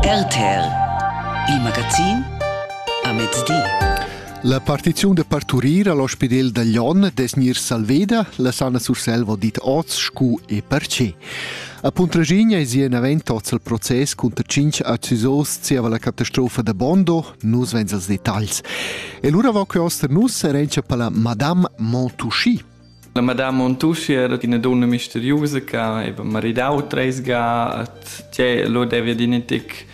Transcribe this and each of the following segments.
RTL, il magazin a mezdi. La partiziun da parturir all'ospedel da Glion des nir Salveda, la Sana Surselva dit oz scu e perce. A Puntraginia è si avent oz il proces cunter cinc accusos zieva la catastrofa da Bondo, nus vens als detagls. E lura va que oster nus erencha pala Madame Montouchi, La madama Montuschi era ina dunna misteriusa che aveva maridau treis ga, tgei lu devi adina tec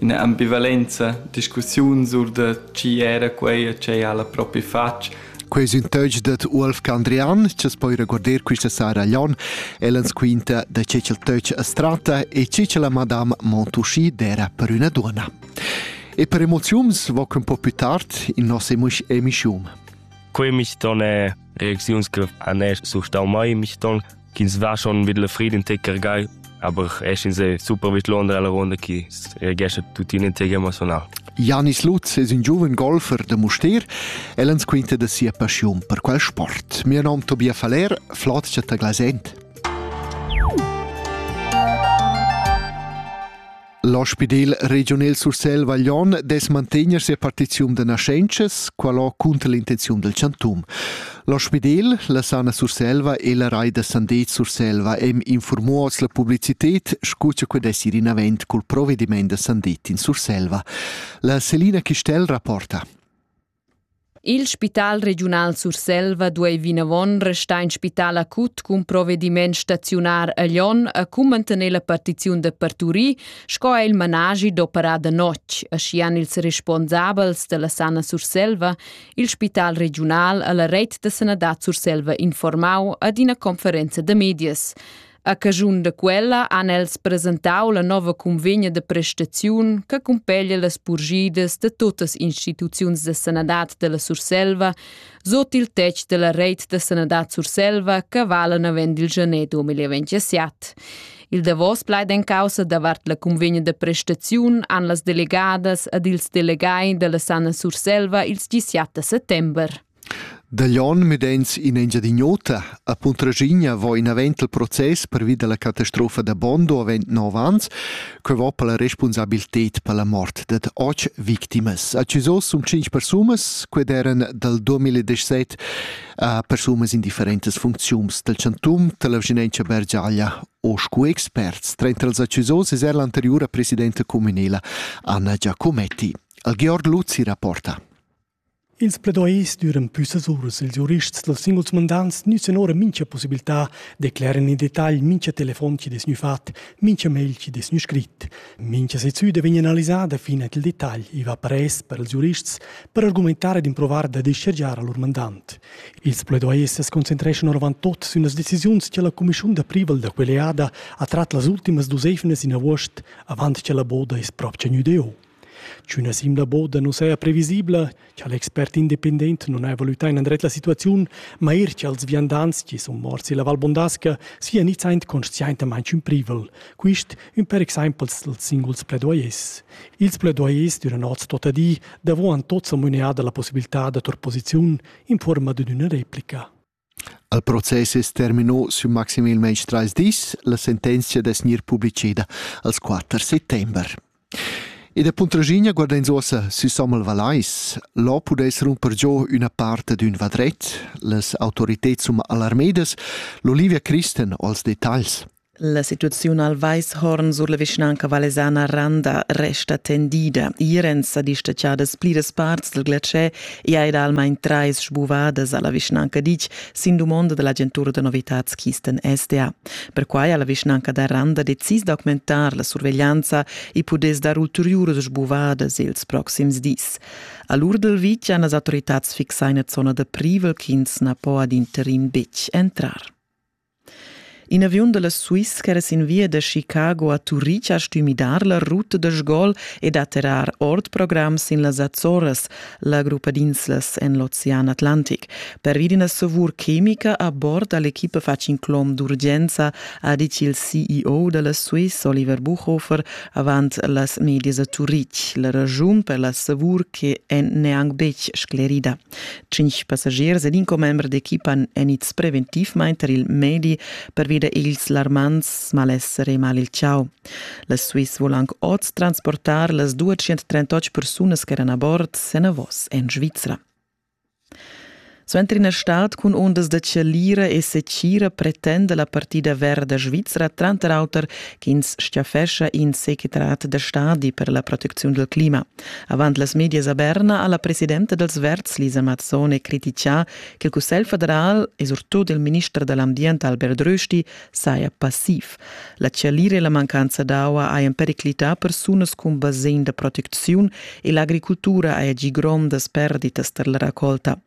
ina ambivalenza, discussiuns sur da tgi era quei e tgei ha la propi fatg. Quei es ün töch dad Uolf Candrian, chi's poi regorder quista sara Glion. El ans quinta da che cha'l töch as tratta e che cha la madama Montuschi d'era per üna duonna. E per emoziuns voc ün po più tard in nossa emischiun. Quei mis don è Reakziuns griff an esch surstau mai michton ch'ins va schon vid la Frieden Ticker gai, aber esch in se super vid Londra la ronda chi regescha tuttina in tega emotional. Janis Lutz es un giuven golfer da Mustér. El ans quinta da sia passiun per quel sport. Mio nom Tobias Faller, Flotcha ta Glasent. L'ospidel regiunal Sursel Vaglion dess mantegner sia partiziun da naschentschas, qualo cunter l'intenziun del chantum. L'ospidel, la sana Surselva e la rai da Sandet Surselva hem informuos la publicitet, scu cha que dess ir in avent cul provediment da Sandet in Surselva. La Selina Chistel rapporta. Il spital regiunal Surselva duei vinavon restar in spital acut cun provediment staziunar a Lyon e cun mantener la partiziun da parturir sco è il managi d'operar da notg, aschia ils responsabels dalla Sana Surselva, il spital regiunal alla reit da sanadad Surselva informau ad ina conferenza da medias. A caschun da quella han els presentau la nova cunvegna de prestaziun che cumpeglia las purgidas de tuttas instituziuns de sanadad della Surselva sut il tetg della reit de sanadad Surselva che vala navend il gener 2027. Il davos plaid en causa davart la cunvegna de prestaziun han las delegadas ed ils delegai della Sana Surselva ils 17 settember. Da Glion mett'ins in Engiadin'Ota a Puntraschigna vo inavant il process pervi dalla catastrofa da Bondo avend nov ans. Quei va per la respunsabiltad per la mort dad otg victimas. A Chisós sun tschinch persunas, quei eran dal 2017 a persunas in differentas funcziuns dal chantum, dalla vischinanza Bergiaglia o scu experts. Trenta als a Chisós es er l'anteriura presidenta communela Anna Giacometti. Al Georg Luzzi rapporta. Ils pledois düran püssas uras. Ils giurists dals singuls mandants nüzan ora mincha possibiltà decleran in detagl mincha telefon chi'd es gnü fat, mincha mail chi'd es gnü scrit. Mincha sezüda vegn analisada fin at il detagl. I va pres per ils giurists per argumentar ed improvar da dischargiar a lur mandant. Ils pledois as concentreschan oravant tuot sün las decisiuns cha la cumischiun da privel da quella eada ha trat las ultimas duos eivnas in avuost, avant cha la boda es propcha gnüda eu. Sch'üna simla boda nu saja previsibla, cha l'expert independent nun haja valütà inandret la situaziun, ma eir cha'ls viandants chi sun morts illa Val Bondasca sia gnits aint consciaintamaing ün privel. Quist ün per exaimpel i'ls singuls pledoyers. Ils pledoyers d'üna not tuotta di davo han tots amuneà da la possibiltà da tour posiziun in fuorma d'üna replica. Il process es terminà sün maximalmaing trais dis. La sentenzia dess gnir publicheda als quatter settember. E da Puntraschigna guardains uossa sü Samuel Valais. Là pudess rumper giò üna part d'ün vadret. Las autoriteds sun alarmedas. L'Olivia Christen als detagls. La situaziun al Weishorn sur la vischnanca valesana Randa resta tendida. Irens sa distacciadas pliras parts del glatschè e ha ed almain trais sbuvadas alla vischnanca dic sin dumonda dell'agentura da novitats Kisten SDA. Perquai ha la vischnanca da Randa decis d'augmentar la surveglianza e pudess dar ulteriuras sbuvadas ils proxims dis. A l'Urdel Vic han las autoritats fixà eine Zona da privel ch'ins na po ad interim betg entrar. In aviun da la Swiss ch'era sin via da Chicago a Turic ha stuì midar la ruta da sgol ed atterrar ord program sin las Azoras, la gruppa d'inslas en l'ocean Atlantic. Pervi d'ina savur chemica a bord ha l'equipa fatg in clom d'urgenza, ha ditg il CEO da la Swiss, Oliver Buchhofer, avant las medias a Turic. La raschun per la savur che è neanc betg sclerida. Tschintg passagiers ed in commember d'equipa èn ids preventivmain tar il medi pervi da ils larmants malesser e mal il chau. La Swiss vulan anc oz transportar las 238 persunas ch'eran a bord enavos en Svizra. Suenter ina stad cun ondas da chalira e secira pretenda la partida verda svizra tranter auter ch'ins stiafescha in secretariat da stadi per la protecziun dal clima. Avant las medias a Berna ha la presidenta dals Verds Lisa Mazzone critichà ch'il Cussegl federal e surtut il minister da l'ambient Albert Rösti saja passiv. La chalira e la mancanza d'aua hajan periclità persunas cun basegn da protecziun e l'agricultura haja gì grondas perditas tar la racolta.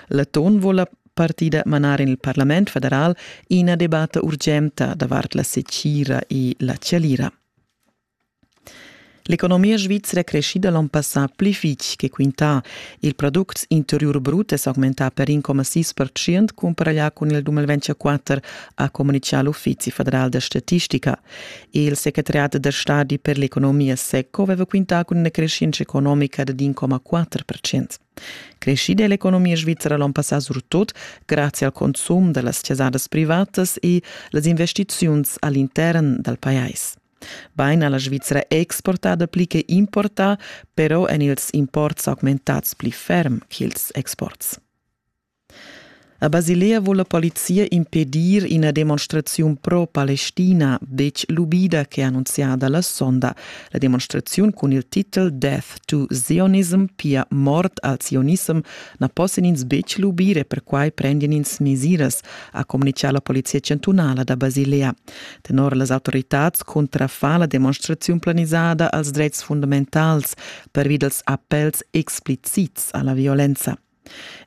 L'Aton vuol la partida manar en il Parlament federal ina debatta urgenta davart la secira e la chalira. L'economia svizra è creschida l'onn passà pli fitg che quintà. Il products interiur brut è s'augmentà per 1,6% cumpara là cun il 2024, ha communitgà l'Uffizi federal da statistica. Il secretariat da stadi per l'economia SECO aveva quintà cun una crescenza economica di 1,4%. Crescida è l'economia svizra l'onn passà surtut grazie al consum da las chasadas privatas e las investiziuns all'intern dal pajais. Bain ha la Svizra exportà dapli che importà, però èn ils imports augmentads pli ferm ch'ils exports. A Basilea vul la polizia impedir ina demonstraziun pro-Palestina, detg l'ubida che ha annunziada la sonda. La demonstraziun cun il titel Death to Zionism, pia mort al zionissem, na possan ins betg lubir e perquai prendian ins mesiras, ha communitgà la polizia chantunala da Basilea. Tenor las autoritads cuntrafan la demonstraziun planisada als dretgs fundamentals pervi dels appels explicits alla violenza.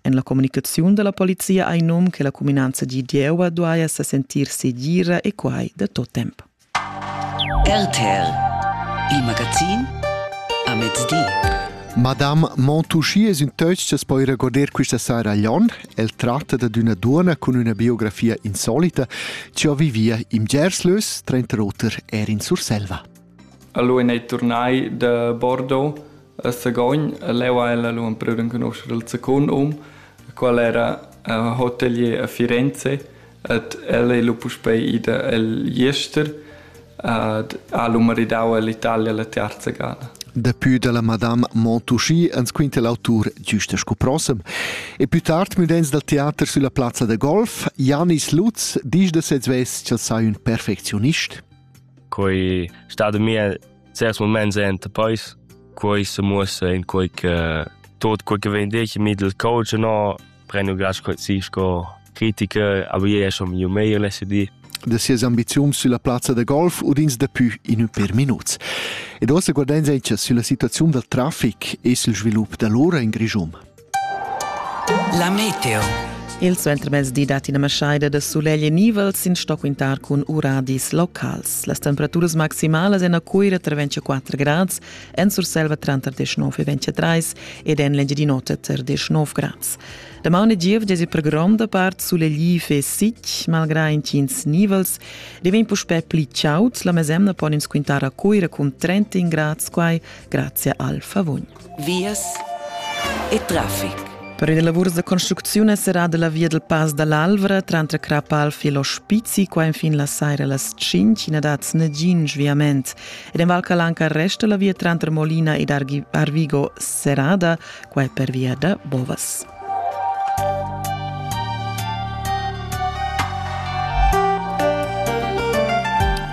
En la comunicaziun della polizia hai num che la cuminanza di Dieua duaja se sentir segira e quai da tot temp. RTL Il magazin a mezdi. Madame Montouchi es ün töch cha's po ir a goder quista saira a Lyon El tratta dad üna duonna cun üna biografia insolita chi ho vivia in Gerslös, trenter oter er in Surselva. Allora è tornai da Bordeaux a Sagogn, leu ha ella lu empreu d'enconoscere il second hom, qual era uh, hotelier a Firenze, Ed el ei lu puspei ida egl jester ed ha lu maridau ell'Italia la tiarza gada. Dapü da la Madame Montucci ans quinta l'autur güsta sco prossem. E pü tard müdains dal teater sülla plazza da golf, Janis Lutz disch da sez vess ch'el sai ün perfectionist? Quei stado mia certs moments enta pois, quei se muossa in quei che tot quei che vende ich mit il coach no prenu gas così sco critica, avevo ja schon miu meglio lesso di da sias ambiziuns sulla plazza da golf u ins dapü in ün per minuts. Ed ossa guardains echa sulla situaziun dal trafic e sul svilup da l'ora in Grischun. La meteo. Il suentermezdi dat ina maschaida da sulegl e nivel sin sto quintar cun uradis locals. Las temperaturas maximalas en a Cuira tra 24 grads En Surselva tranter 19 e 23 ed en l'Engiadin'Ota tar 19 grads. La mauna giev desi per gronda part sulegliv e sic, malgrà intgins nivels, devegn puspè pli chaud. La mesemna pon ins quintar a Cuira cun 30 grads, quai grazie al favugn. Vias e traffic. Per i lavurs da construcziun è serrada la via del Pass dall'Alvra trantre Crapalfi e lo Spizzi, qua infin la saira las 5, in dat nagin sviament. Ed en Val Calanca resta la via tranter Molina ed Arvigo serrada, quai pervia da bovas.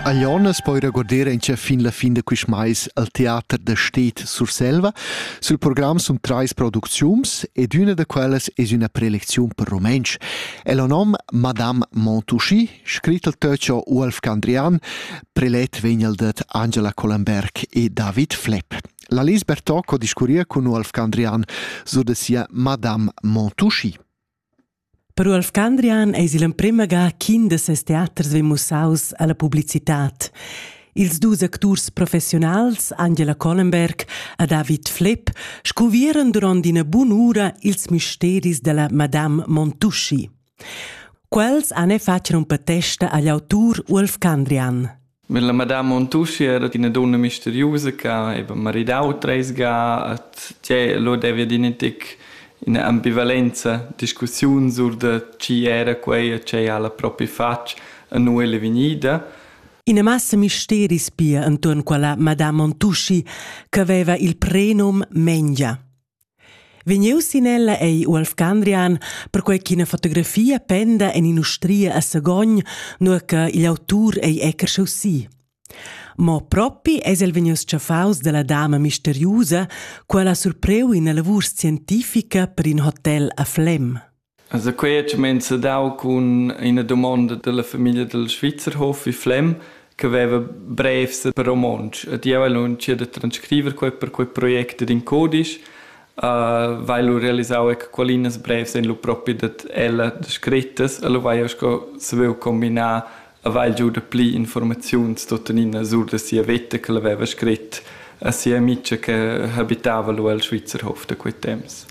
A Jonas poi regorder in che fin la fin da quist mais al teater da Stet Surselva. Sul program sun trais producziuns ed üna da quellas es üna prelecziun per rumentsch. El ho nom Madame Montouchy Scrit il Töcho Uolf Candrian, prelet vegn el dad Angela Collenberg e David Flepp. La Lis Bertocco discurria cun Uolf Candrian sur de sia Madame Montouchi. Per Uolf Candrian eis il emprema ga ch'in de ses teaters vegn mussaus alla publicitat. Ils dus acturs professionals, Angela Collenberg e David Flepp, scuvieran duront ina bun'ura ils misteris della Madame Montouchi. Quels han e fatg rumpatesta agl autur Ulf Candrian. Mit la Madame Montuschi era ina donna misteriosa che aveva maridau treis ga, et che lo deve dinetic ina ambivalenza discussiun sur de chi era quei e che ha la propria fatg a noi le vegnida. Ina massa misteris pia enturn quella Madame Montuschi che aveva il prenum Mengia. Vegnius sin ella ei Uolf Candrian, perquei ch'ina fotografia penda en in'ustria a Sagogn, nua che igl autur ei ecarscheu si. Mo propi eis el vegnius tschaffaus dalla dama misteriusa, quella surpreu ina lavur scientifica per in hotel a Flem. Also quei ha cumenza dau cun ina dumonda dalla famiglia dil Schweizerhof vi Flem che veva brevs per romontsch ed jeu hai lu entschiet da transcriver quei per quei project ed in codisch. Vai lu realisau ec qualinas brevs en lu propi dad ella da screttas e lu vai jeu sco saviu combinar e vai giu dapli informaziuns tuttenina sur da sia veta che el haveva scret a sia amica che habitava lu el Schweizerhof da quei temps.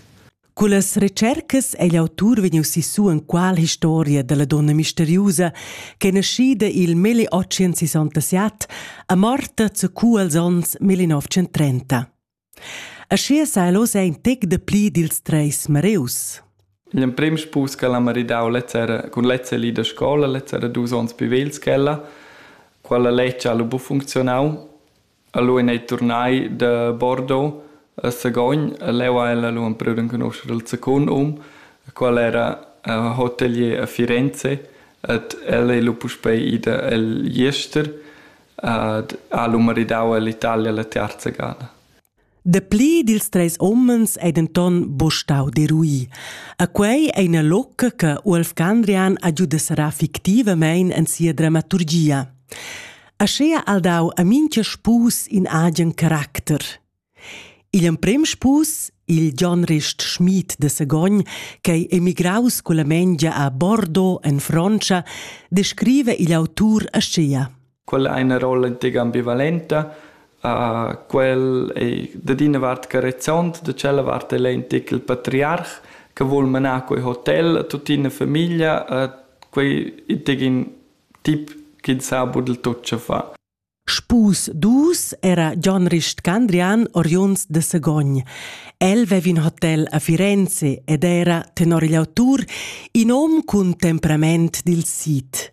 Cullas retschercas ei l'autur vegniu sissu enqual historia dalla donna misteriusa che naschida il milli otschen sessantasett e morta zacu als onns 1930. Aschia sai los ein tec de pli dils treis mareus. L'emprim spus che l'ha maridau lezzera cun lezza li da scola, lezzera dus onns pivel schella, quella lec ha lu bu funzionau Lu ein ei turnai da Bordeaux a Sagogn e leu ha ella lu empriu d'enconuscher il secund um, quel era hotelier a Firenze ed el ei lu puspei ida egl jester ed ha lu maridau ell'Italia la tiarza gada. Dapli dils treis umens ei denton buca stau derui. E quei ei ina locca che Uolf Gandrian ha giu desserrar fictivamein en sia dramaturgia. Aschea ha dau a mincha spus in agen caracter. Il emprem spus, il John Rist Schmid de Sagogn, ch'ei emigraus culla Mengia a Bordeaux en Frontscha, descrive igl autur aschea. Quella è ina rolla intg ambivalenta. Uh, quel è dad ina vart carezzont, da tschella vart è intg il patriarch che vuol manar quei hotel a tuttina famiglia. Uh, quei è intg in tip che sa budel tut ce fa. Spus dus era John Rist Candrian oriunds de Segogn. El vev in hotel a Firenze ed era, tenor igl autur, in hom cun temperament dil sid.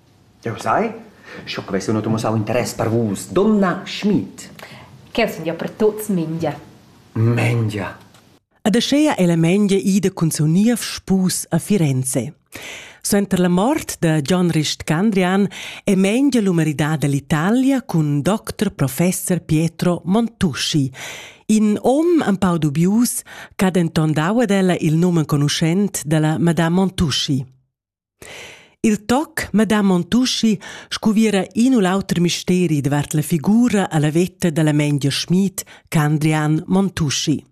Jeu sai, sco che vess jeu notg mussau interess per vus, donna Schmid. Ch'el sun ja per tuts Mengia. Mengia. Ed aschea è la Mengia ida cun seu niev spus a Firenze. Suenter la mort da John Rist Candrian è Mengia lu maridada all'Italia cun doctor professor Pietro Montuschi, in om empau dubius ch'ha denton dau ad ella il num enconuschent dalla madame Montuschi. Il toc Madame Montuschi scuviera in u l'auter misteri davart la figura alla vetta dalla Mengia Schmid Candrian Montuschi.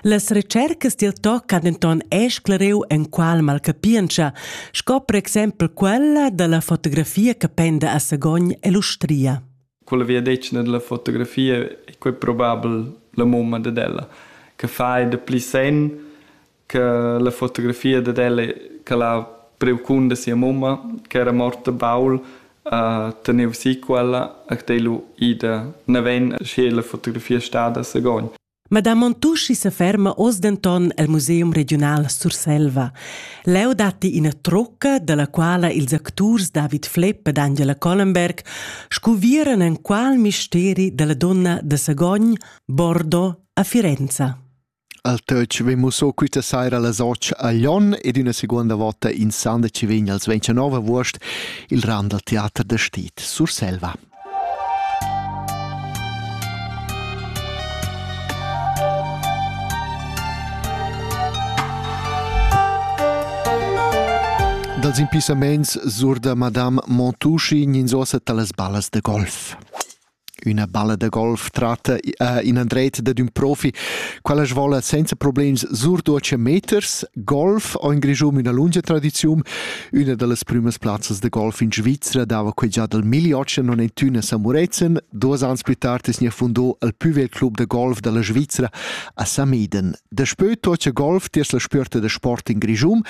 Las recercas dil toc han denton esclareu enqual malcapientscha, sco per exempel quella dalla fotografia che penda a Sagogn e l'Ustria. Quella viadetgna della fotografia è quei probabel la mumma ded ella, che fa da pli sen che la fotografia dad ella che l'ha priu cun da sia mumma che era morta baul uh, teneva si quella e che lu ida naven sche la fotografia stada sagogn. Madame Montucci se ferma oz denton el Museum Regional Surselva. Leu datti ina trocca, dalla quala ils acturs David Flepp ed Angela Collenberg scuvieran enqual misteri dalla donna de Sagogn, Bordeaux a Firenza. Al töch vegn mussò quista saira las otg a Lon ed üna seguonda vota in san da chi vegn als 29 avuost il ran dal teater da Stit Surselva. Dals impissamaints sur da Madame Montucci gninsosa talas ballas de golf. Üna balla da golf tratta uh, in andretta dad ün profi, quella svola senza problems surduotscha meters, golf o in Grischun üna lungia tradiziun. Üna da las prümas plazzas da golf in Svizra dava que già dal 1890 a San Murezzan. Duos ans plü tard es gnà fundò il plü vegl club da golf da la Svizra a Sameden. Daspö tuotscha golf tiers la spüerta da sport in Grischun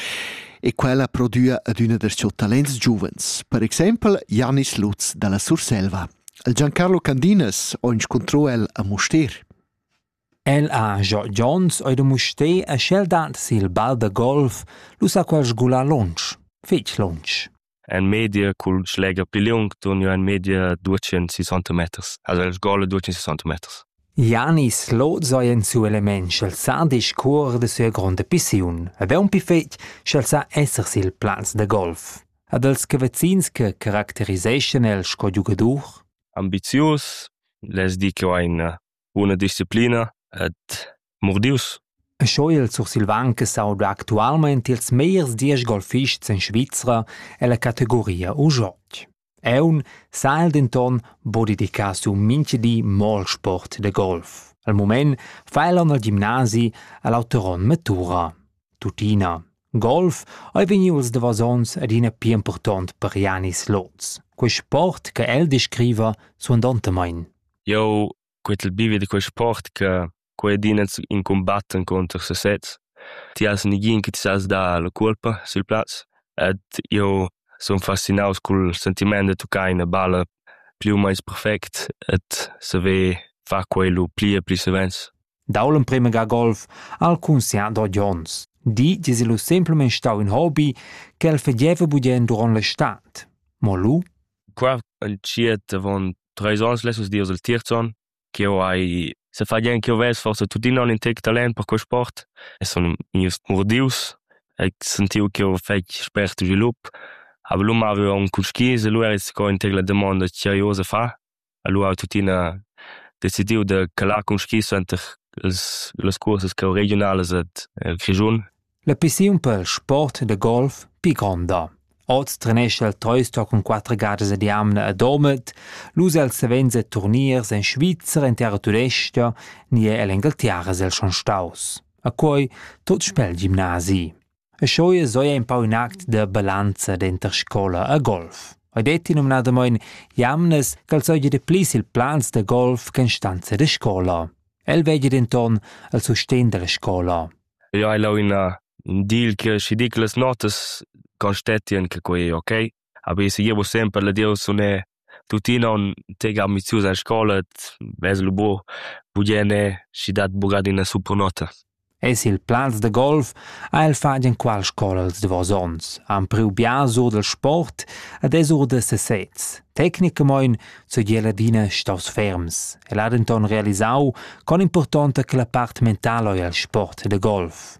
e quella prodüa ad üna da siu talents giuvens, per exempel Janis Lutz dalla Surselva. Il Giancarlo Candinas ho inscuntrò el a Mustér. El ha Gio Jones oi da Mustér e sch'el dat sil bal da golf, lu sa quel sgular lunsch, fetg lunsch. En media cul schleger pli liung turniu en media duecentssessanta meters. Also el sgola duecentssessanta meters. Janis Loz ei en suo element sch'el sa discuor de sia gronda pissiun ed è un pifet sch'el sa esser sil plaz da golf. Ad els che vezins che caracteriseschan el sco giugadur? Ambizius, les di che ho ein buna disciplina ed murdius. E sco il sursilvan che s'auda actualmain ils megliers diesch golfists en Svizra è la categoria u Jotg. Eun sa el denton bo dedicar su minchedi mol sport de golf. Al moment fa el al gimnasi all'Auteron Matura. Tutina. Golf ei vegnius davos onns adina pli impurtont per Janis Loz. Quei sport che el descriva suandontamein. Jeu quetel bivi da quei sport che quei adina in combatten contro sesez. Ti has nigin che ti sas dar la colpa sil plaz ed jeu sun fascinaus cul sentiment da toccare una balla più o meins perfect et saver far quello pli e pli savens. dau l'emprema ga golf al conscient d'od ons. Di dis illo semplamain stau ün hobby che el fegeva budien durant l'estat. Mo lu? Qua il ciet avon treis ons lessos dios il tiert on che ho hai se fa gnien che ho ves forse tuttina un intec talent per quel sport e son mius murdius e sentiu che ho fec spert svilup aber lu mavu on cul skis e lu er is co intec la domanda che io se fa Allura ho tuttina decidiu da calar cun schi suenter las las cursas regiunalas ed el Grischun. La pissiun per sport da golf pli gronda. Oz trenescha il Toyster cun quatter gadas ad jamna a Domat, l'us els savens a turniers en Svizra, en terra tudestga, ni er ell'Engalterra el schon staus. A quei tot spel gimnasi. E sco jeu hai empau in act da balanza denter scola e golf. Ei detti numnadamein jamnas ch'el seigi de plis il plans da golf che instanza de scola. El vegli denton al sustegn dalla scola. Eu hai lau ina dil che schi dic las notas constetian che quei ei ok. Habess jeu semper la dieus sunè tuttina on tec ambizius en scola, vess lu buc pudieu anè, schi dat buc adina supernota. En sil plaz da golf ha el fatg enqual scola als davos onns, han priu biars or dal sport ed es or da sesez. Tecnicamein seigi el adina staus ferms. El ha denton realisau con importanta che la part mentala ei el sport da golf.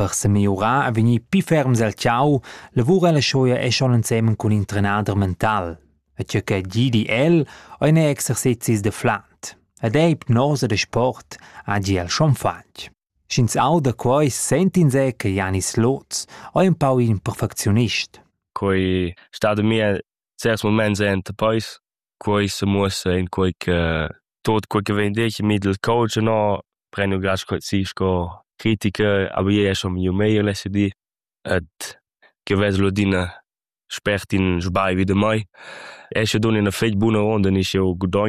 Per semiurar ei vegnì pli ferms el tgau, lavura la schoia è schon ensemen cun in trenader mental. E tgei che gidi el ein exercezis da flant. Ed ei ipnosa da sport ha gi el schon fatg. Sch'ins auda quei, sentins ei che Janis Loz ei un pau in perfectionist. Quei sta da mir certs moments enta peis quei semuossa in quei che tot quei che vegn detg mi dal coach no prendo gast si sco criticher a bi ei schon miu meglier lesser di et che vesel adina spert in sbagli da mai. Esche dun ina fetg buna ronda nisch jeu gudogn